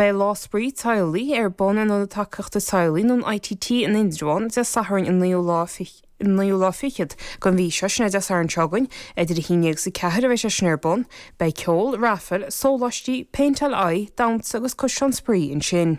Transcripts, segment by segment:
Beidh Lá Spraoi Teaghlaigh ar bun in Ionad Tacaíochta Teaghlaigh nó an ITT in Indreabhán Dé Sathairn an 9ú lá fichead den mhí seo, sin é Dé Sathairn seo againn, idir a haon dhéag is a ceathair a bheas sé sin ar bun. Beidh ceol, raifil, sóláistí, péinteáil aghaidh, damhsa agus caisleán spraoi ansin.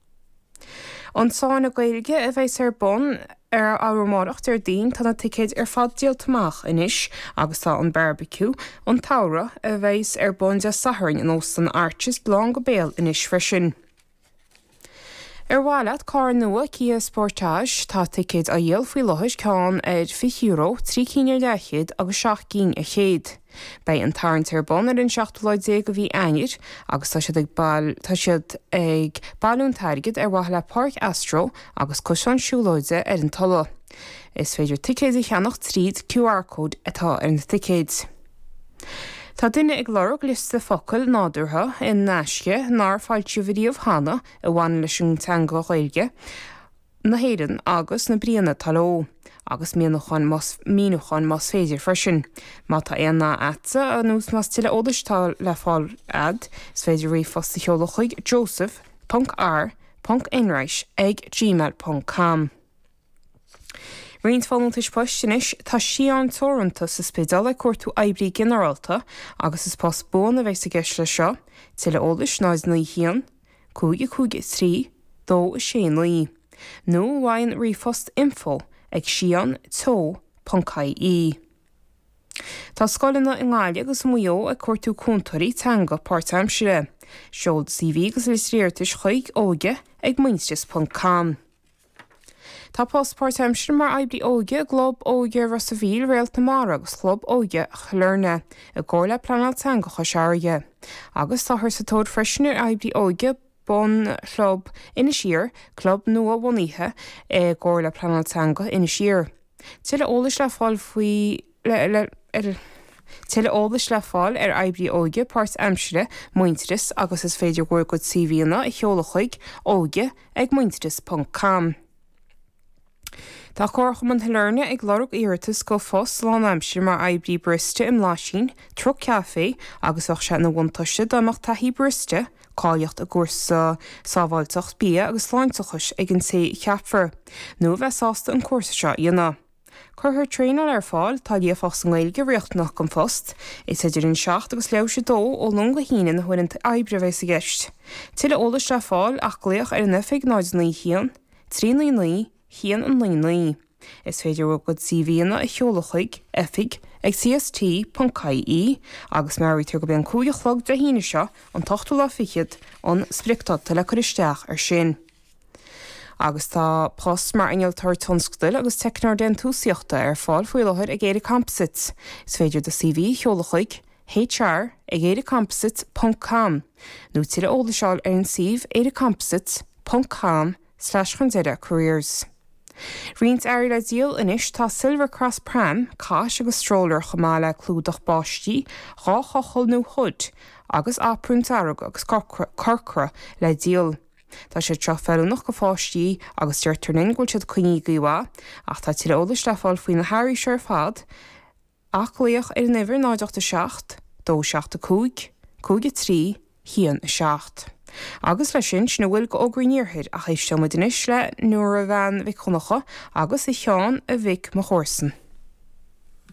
An Sána Gaeilge a bheas ar bun arú amárach, Déardaoin. Tá na ticéid ar fad díolta amach anois agus tá an Beárbaiciú an tSamhraidh, a bheas ar bun Dé Sathairn in Óstán Arches, lán go béal anois freisin. Ar mhaith leat carr nua Kia Sportage? Tá ticéid á dhíol faoi láthair, ceann ar €20, trí cinn ar leathchéad agus seacht gcinn ar chéad. Beidh an tarraingt ar bun ar an seachtú lá déag de mhí Eanáir agus tá siad tá siad ag bailiú an t-airgead ar mhaithe le Páirc Astro agus Cosán Siúlóide ar an Tulaigh. Is féidir ticéid a cheannach tríd QR code atá ar na ticéid. Tá duine ag lorg liosta focail nádúrtha in aisce nár foilsíodh riamh cheana a bhaineann leis an teanga Ghaeilge. na hÉireann agus na bríonna atá leo, agus míniúcháin más, míniúcháin más féidir freisin. Má tá aon nath agatsa nó más tuilleadh eolais atá le fáil a'd, is féidir ríomhphost a sheoladh chuig, joseph, ponc, R, ponc, enright, ag, gmail, ponc, com. Roinnt folúntais poist anois, Tá Sián Teoranta sa Spidéal ag cuartú oibrí ginearálta agus is post buan a bheas i gceist leis seo. Tuilleadh eolais, 09, 1. 5 5 3 2 6 9 nó ar an ríomhphost Info ag sián teo ponc ie Tá scoileanna i nGaillimh agus i Maigh Eo ag cuartú cúntóirí teanga páirtaimsire. Seol do CV agus litir iarratais chuig, óige ag muintearas ponc com. Tá post páirtaimseartha mar oibrí óige i gClub Óige Ros a' Mhíl, Réalt na Mara agus Chlub Óige Shailearna, i gcomhar le Pleanáil Teanga Chois Fharraige. Agus táthar sa tóir freisin ar oibrí óige don Chlub Inis Oírr, club nua bhunaithe i gcomhar le Pleanáil Teanga Inis Oírr. Tuilleadh eolais le fáil faoi. Tuilleadh eolais le fáil ar oibrí óige páirt-aimsire Muintearas agus is féidir bhur gcuid CVanna a sheoladh chuig, oige ag muintearas ponc com. Tá Comharchumann Shailearna ag lorg iarratas go phost lánaimsire mar oibrí barista i mblaisín, truc caife agus bheadh sé ina bhuntáiste dá mbeadh taithí barista, cáilíocht i gcúrsa sábháilteacht bia agus sláinteachais ag an té a cheapfar, nó a bheith sásta an cúrsa seo a dhéanamh. Cuirfear traenáil ar fáil. Tá líofacht sa nGaeilge riachtanach don phost. Is idir an seacht agus leathuair théis a dó ó Luan go hAoine na huaireanta oibre a bheas i gceist. Tuilleadh eolais le fáil ach glaoch ar an oifig 091 399 199. Is féidir bhur gcuid CVanna a sheoladh chuig oifig ag CST ponc IE agus meabhraítear gurb é an cúig a chlog Dé hAoine seo an t-ochtú lá fichead an spriocdáta le cur isteach ar sin. Agus tá post mar Innealtóir Tionscadail agus Teicneoir Déantúsaíochta ar fáil faoi láthair ag ÉireComposites. Is féidir do CV a sheoladh chuig, hr, ag éirecomposites ponc com nó tuilleadh eolais a fháil ar an suíomh éirecomposites ponc com slash chun deireadh careers. Roinnt earraí le díol anois Tá Silvercross Pram, Cot agus Stroller chomh maith le clúdach báistí, dhá chochall nó hood, agus aprún dearg agus corcra le díol. Tá siad seo feiliúnach go pháistí agus deirtear linn go bhfuil siad coinnithe go maith, ach tá tuilleadh eolais le fáil faoi na hearraí seo ar fad ach glaoch ar an uimhir 0 8 7 2 7 5 5 3 1 7. Agus le sin, sin a bhfuil go fhógraí an Iarthair ach éisteoidh muid anois le Nóra Bhean Mhic Dhonnacha agus a Sheáin a mhic mo chomharsan.